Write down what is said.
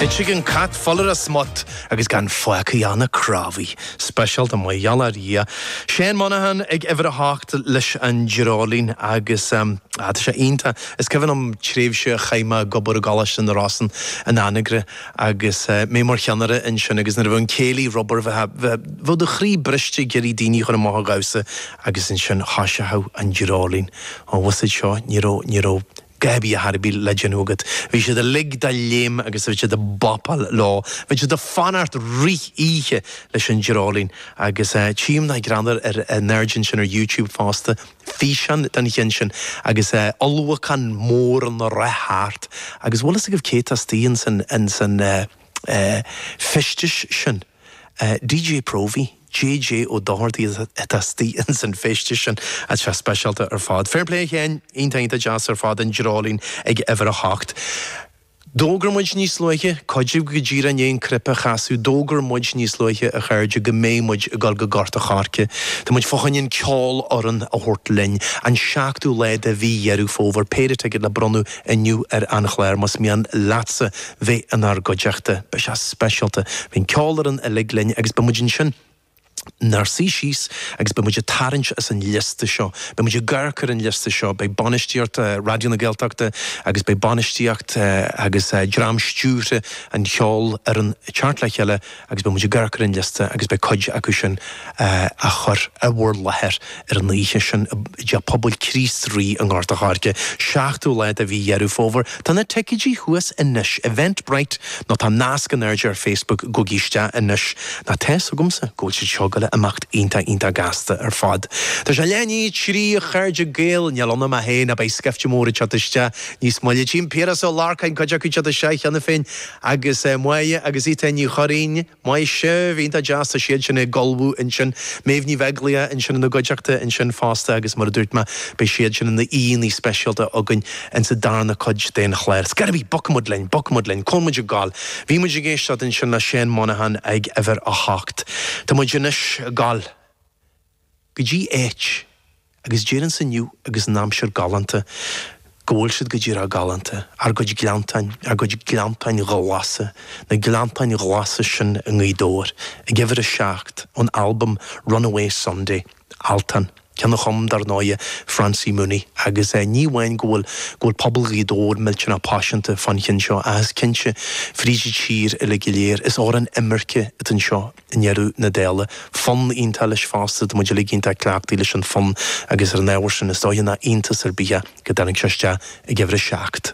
D'eitigh an cat fuil ar a smut agus gan faic a dhéanamh crábhaidh. Speisialta mar gheall ar Dhia. Seán Monaghan ag uimhir a hocht leis an dreoilín agus em ah tá sé iontach. Is cuimhin liom tréimhse a chaith mé ag obair i gColáiste na Rosann in Anagaire agus eh mé mar cheannaire ansin agus nuair a bheadh an céilí ar obair bheadh, bheadh, bheadh do chroí briste ag iarraidh daoine a chur amach a dhamhsa agus ansin thoisigheadh an dreoilín. Ó mhuise seo ní raibh, ní raibh, Cá bith a dhath ar bith le déanamh agat, bhí siad uilig de léim agus bhí siad a bopáil leo. Bhí siad a fanacht rith oíche leis an dreoilín. Agus tchím dá greannmhar ar an aird ansin ar YouTube fosta, físeán den cheann sin agus ulchabhán mór ina rith thart. Agus bhfuil fhios agaibh cé atá astoigh ins an fheisteas sin? DJ Próvaí, JJ Ó Dochartaigh atá istigh ins an feisteas sin. Tá sé speisialta ar fad. Fair play a Sheáin, iontach iontach deas ar fad an dreoilín ag uimhir a hocht. D'fhógair muid níos luaithe, cuid díbh go díreach i ndiaidh an cnaipe a chasadh, d'fhógair muid níos luaithe a chairde go mbeidh muid ag dul go Gort an Choirce. Tá muid fá choinne an cheolfhoireann a thabhairt linn, an seachtú lá de mhí Dheireadh Fómhair, péire ticéad le bronnadh inniu ar an chlár más mian leatsa bheith inár gcuideachta. Beidh sé speisialta. Beidh an cheolfhoireann uilig linn agus beidh muid ansin inár suí síos agus beidh muid ag tarraingt as an liosta seo. Beidh muid ag amharc ar an liosta seo. Beidh bainistíocht Raidió na Gaeltachta agus beidh bainistíocht agus dream stiúrtha an cheolfhoireann ag teacht le chéile, agus beidh muid ag amharc ar an liosta agus beidh cuid acu sin á chur i bhur láthair ar an oíche sin i dTeach Pobail Chríost Rí i nGort an Choirce, 7ú lá de mhí Dheireadh Fómhair. Tá na ticéidí thuas anois, Eventbrite nó tá nasc in airde ar Facebook, gabhaigí isteach anois. Nó tá 'fhios agamsa go bhfuil siad seo ag gabháil a imeacht iontach iontach gasta ar fad. Tá sé leath i ndiaidh a trí a chairde Gael, níl ionam ach é ná beidh scaifte mór ag teacht isteach níos moille. Tchím Piaras Ó Lorcáin cuid acu teacht isteach cheana féin. agus Máire agus Étáin Ní Churraoin, maise, iontach deas, tá siad sin ag ullmhú ansin, Méabh Ní Bheaglaoich ansin ina gcuideachta ansin fosta agus mar a dúirt mé, beidh siad sin ina aíonna speisialta againn ins an darna cuid den chlár. Scéal ar bith! Bogfaimid linn, bogfaimid linn, coinneoidh muid ag gabháil. Bhí muid ag éisteacht ansin le Seán Monaghan ag uimhir a hocht. Tá muid anois ag gabháil. go dtí áit agus déarfainnse inniu agus an aimsir galánta go bhfuil siad go díreach galánta, ár gcuid gleanntáin, ár gcuid gleanntáin ghlasa, na gleanntáin ghlasa sin i nGaoth Dobhair, ag uimhir a seacht, ón albam Runaway Sunday, Altan, ceann a chum, dar ndóigh, Francie Mooney, agus ní amháin go bhfuil go bhfuil pobal Ghaoth Dobhair millteanach paiseanta fán cheann seo ach is cinnte, fríd an tír uilig go léir, is amhrán imirce atá anseo. I ndeireadh na dála, fonn iontach leis fosta, tá muid uilig iontach cleachtaithe leis an bhfonn agus ar an ábhar sin, is dóiche nach iontas ar bith é go dtáinig sé isteach ag uimhir a seacht.